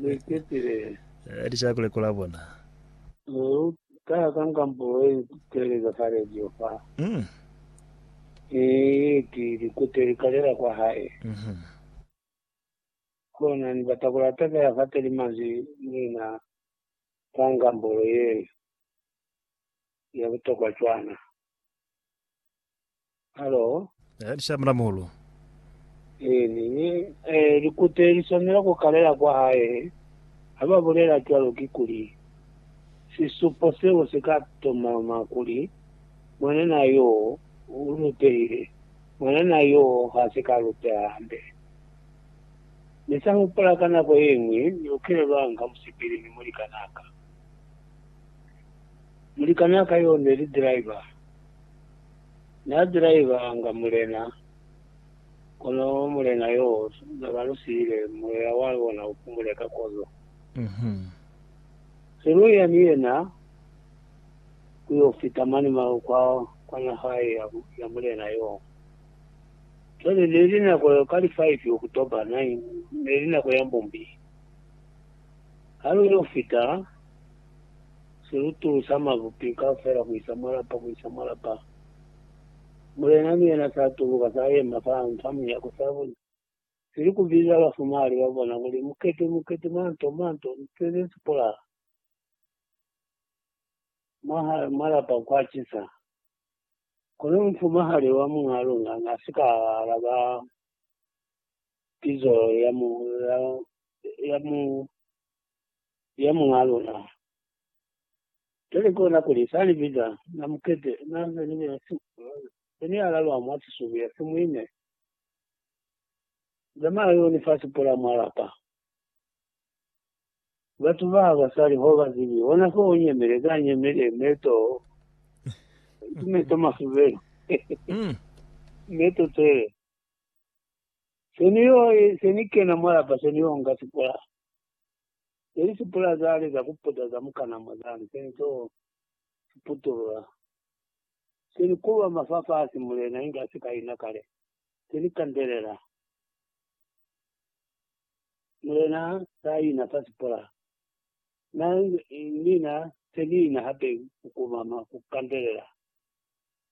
Luiketile. Li ca ku lekola bona. Lu ka ka ngambo ye teleka fa radio fa. Mm. Ni ki likute li kalela kwa hae. Mhm. Kona ni bata ku latekela fa teli manzwi mina ka ngambo ye ya butokwa cwana. Halo. Eh, ni shamula muhulu. Eh, ni, ni, eh, likute li swanela ku kalela kwa hae. Ha ba bulela cwalo ki kuli, sisupo seo si ka tomama kuli mwanana yo u lupehile. Mwanana yo ha si ka lupeha hande. Ni sa hupula ka nako ye ñwi ni lukile lwa nga musipili ni mulikanaka. Mulikanaka yo ne li driver. Na driveanga Mulena, kono Mulena yo na ba lu siile, Moya wa lona u pumule ka kozo. Se lu ya ni yena ku yo fita mane mao kwa, kwa naha ya, ya Mulena yo. Cwale, ne li nako ya ka li five October, nine, ne li nako ya mbumbi. Ha lu yo fita. si utulusa mabupi kaufela kuisa mwa lapa kuisa mwa lapa. Mulena ni yena sa tuluka, sa yema fa fa munyako, sa buna, si li ku biza bafumali ba bona kuli, Mukete, mukete, manto, manto, nte ze si polaha! Mwahali mwa lapa kwa cisa. Kono mufumahali wa muñaa luna na si ka alaba pizo ya mu, ya, ya mu, ya Muñaa luna. Cwale kona kuli sa li biza na mukete, na za ni bena si, se ni alalwa mwa sisubi ya simuine. Zamaya yo ni fa sipola mwa lapa. Batu ba ba sa li ho ba zibi, hona fo u nyemele, ka nyemele, meto, ki meto masubelo, meto tsele. Se ni yo, se ni kena mwa lapa, se ni yo nga sipola. Neli sipula zali za kuputa za mukana mwa zali seli to siputulula. Seli kulwa mafafasi mulena inge asika ina kale. Seli kandelela. Mulena sa ina fa sipula. Na nina seli ina hape kukumama kukandelela.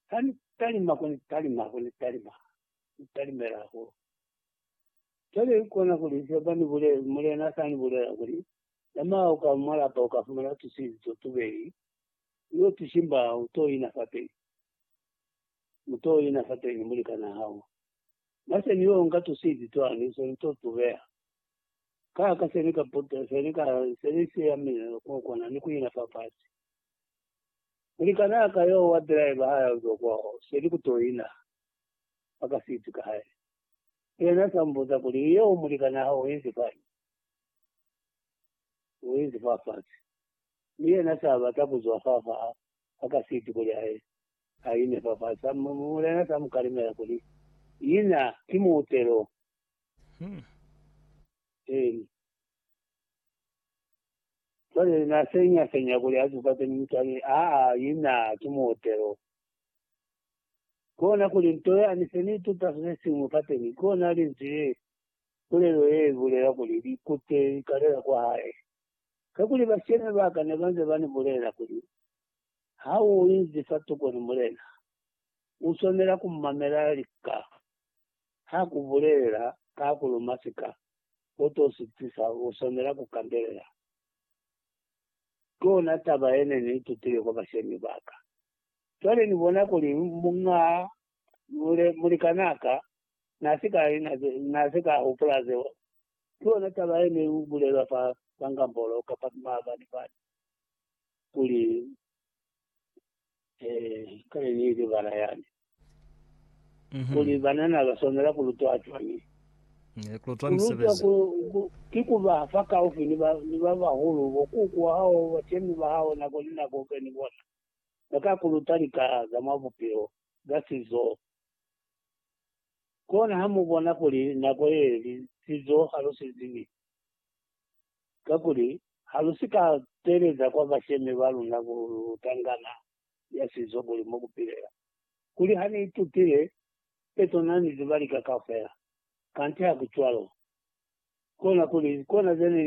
Hani talima kuni talima kuni talima. Talimela hulu. Cwale kona kuli se bani bulezi, Mulena sani bulela kuli, Zamaya uka mwa lapa uka fumana tusizi to tubeli, uyo tushimba, uto ina fateni. Muto ina fateni mulikana hao. Nase ni yo nga tusizi twani, se ni to tubeha. Ka, ka seni ka puta, seni ka, seni si yamile ko kona ni kuina fa fasi. Mulikana ka yo wa driver haya uzo kwao, seni kuto ina fa kasiti ka hae. Yena sa mbuza kuli, Yeo mulikan'a hao uinzi kañi? Uinzi fafasi. Mi yena sa bata kuzwa fafa'a ha kasiti kuli aye aine fafasi, Mulena sa mukalimela kuli, Ina, ki muutelo. Eeni. Cwale na senya-senya kuli azukate mi mutwani, Aa, ina, ki muutelo. Kona kuli, Nto yani se ni ituta sesesiñwi kateñi, kona linzwi le. Pulelo ye i bulela kuli, Likute li kalela kwa hae. Kakuli bashemi ba ka ne ba nze ba ni bulela kuli, Ha u inzi fa tukoni, Mulena, u swanela ku mamela lika. Ha ku bulelela ka ku luma sika, u to si tisa, u swanela ku kandelela. Kona taba ye ne ni itutile kwa bashemi ba ka. Cwale ni bona kuli muñ'a mulikan'a ka n'a si ka li, n'a si ka hupula zeo. Ki yona taba ye ne i bulelwa fa Sangambolo kapa ki maabani fani, kuli, Ee, kale ni li bana yani, kuli banana ba swanela ku lutwa cwañi? Ku lutwa ki ku ba fakaufi ni ba bahulu, bo kuku wa hao, bashemi ba hao, nako ni nako u be ni bona. ba ka ku luta lika za mwa bupilo ka sizo. Kona ha mu bona kuli nako ye li sizo ha lu si zibi, kakuli ha lu si ka teeleza kwa bashemi ba luna ku luta ngana ya sizo kuli mo ku pilela, kuli ha ni itutile peto na ni ziba lika kaufela. Kanti ha ku cwalo. Kona kuli, kona ze ni